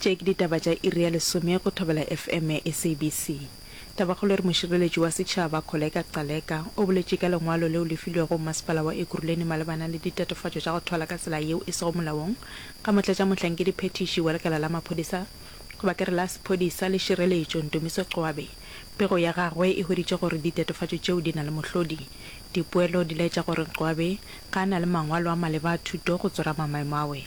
Tše ke ditaba tša iri ya lesome go Thobela FM ya SABC. Tabakgolo e re mošireletši wa setšhaba, Kholeka Gcaleka, o boletše ka lengwalo leo le filwego mmasepala wa Ekurhuleni malebana le ditatofatšo tša go thwala ka tsela yeo e sego molaong ga motlatšamohlankedi phethiši wa lekala la maphodisa goba ke re la sephodisa le šireletšo, Ndumiso Qwabe. Pego ya gagwe e hweditše gore ditatofatšo tšeo di na le mohlodi. Dipoelo di laetša gore Qwabe ga a na le mangwalo a maleba a thuto go tsorama maemo a we.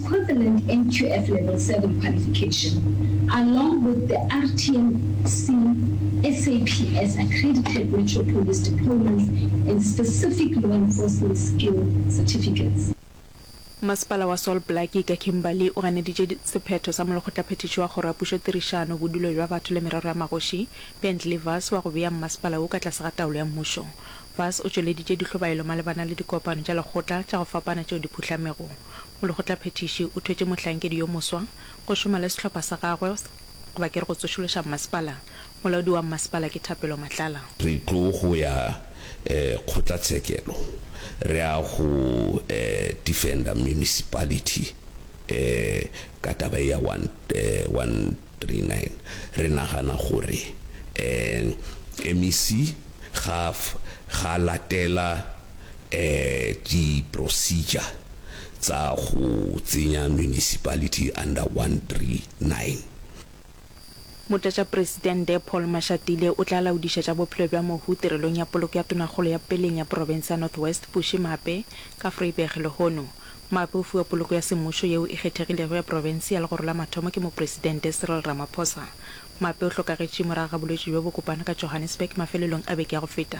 equivalent NQF Level Seven qualification, along with the RTMC SAPS accredited Metro Police deployments and specific law enforcement skill certificates. Masepala wa Sol Blackie ka Kimberly o ganeditše sephetho sa molekgotlaphethiši wa Kgoro ya Pušo Tirišano, Bodulo bja Batho le Merero ya Magoši, Bentley Vass wa go bea mmasepala wo ka tlase ga taolo ya mmušo. Vass o tšweleditše dihlobaelo malebana le dikopano tša lekgotla tša go fapana tšeo di phuhlamego. Molekgotlaphethiši o thwetše mohlankedi yo moswa go šoma le sehlopha sa gagwe goba ke re go tsošološa mmasepala. Molaodi wa mmasepala ke Thapelo Matlala. Re tlo go ya kgotlatshekelo re ya go defender municipality ka taba e ya one one three nine. Re nagana gore MEC ga a latela Di procedure tsa go tsenya municipality under one three nine. Motlatšapresidente Paul Mashatile o tla laodišetša bophelo bja mohu tirelong ya poloko ya Tonakgolo ya Peleng ya Profense ya North West Bushy Mape ka Vryburg lehono. Mape o fiwa poloko ya semmušo yeo e kgethegilego ya profense ya legoro la mathomo ke Mopresidente Cyril Ramaphosa. Mape o hlokagetše morago ga bolwetši bjo bo kopana ka Johannesburg mafelelong a beke ya go feta.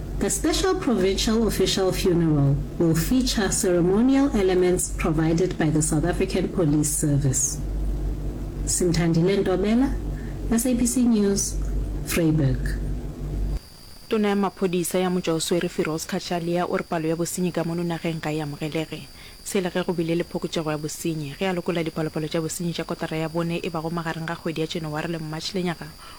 The special provincial official funeral will feature ceremonial elements provided by the South African Police Service. Simthandile Ntobela, SABC News, Vryburg. Tona ya maphodisa ya Motšwaoswere Firoz Cachalia o re palo ya bosenyi ka mono nageng ga e amogelege, se le ge go bile le phokotšego ya bosenyi. Ge a lokola dipalopalo tša bosenyi tša kotara ya bone e bago magareng ga kgwedi ya Janaware le March lenyaga,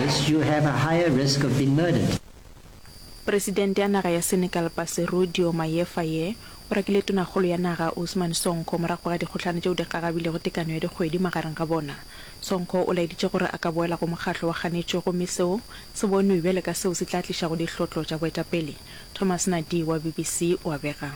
This you have a higher risk of being murdered. Presidente ya naga ya Senegal Bassirou Diomaye Faye o rakile tonakgolo ya naga Ousmane Sonko morago ga dikgohlano tšeo di gagabilego tekano ya dikgwedi magareng ga bona. Sonko o laeditše gore a ka boela go mokgatlo wa ganetšo gomme seo se bonwe bjale ka seo se tla tlišago dihlotlo tša boetapele. Thomas Nadie wa BBC o a bega.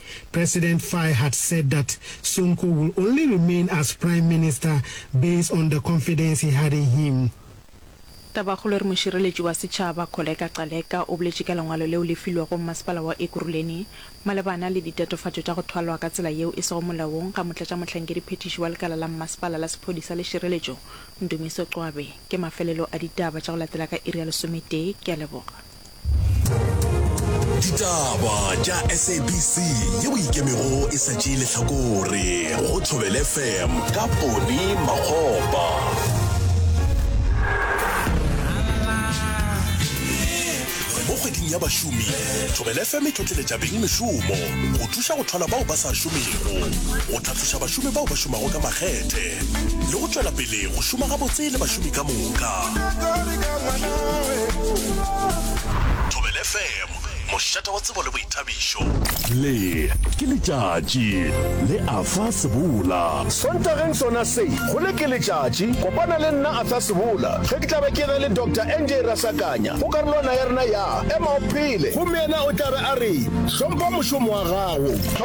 President Faye had said that Sonko will only remain as Prime Minister based on the confidence he had in him. Tabakgolo e re mošireletši wa setšhaba, Kholeka Gcaleka, o boletše ka lengwalo leo le filwego mmasepala wa Ekurhuleni malebana le ditatofatšo tša go thwalwa ka tsela yeo e sego molaong ga motlatšamohlankedi phethiši wa lekala la mmasepala la sephodisa le šireletšo, Ndumiso Cwabe. Ke mafelelo a ditaba tša go latela ka iri ya lesometee. Ke a leboga. ditaba tša sabc ye o ikemego e sa tšee lehlakore go thobele fm ka pone magopa mo kgweding ya bašomi thobele fm e tlotleletša beng mešomo go thuša go tlhola bao ba sa šomego a tloša bašomi bao ba šomago ka makgethe le go tšwela pele go šoma gabotse le bašomi ka moka. Thobela FM, mošate wa tsebo le boithabišo. Le ke letšatši le Arthur Sebola. Sontageng sona se, go Le ke letšatši, kopana le nna Arthur Sebola ge ke tla be ke ge le Doctor NJ Rasakanya go karolwana ya rena ya Ema o Phele. Gomme yena o tla be a re, Hlompha mošomo wa gago.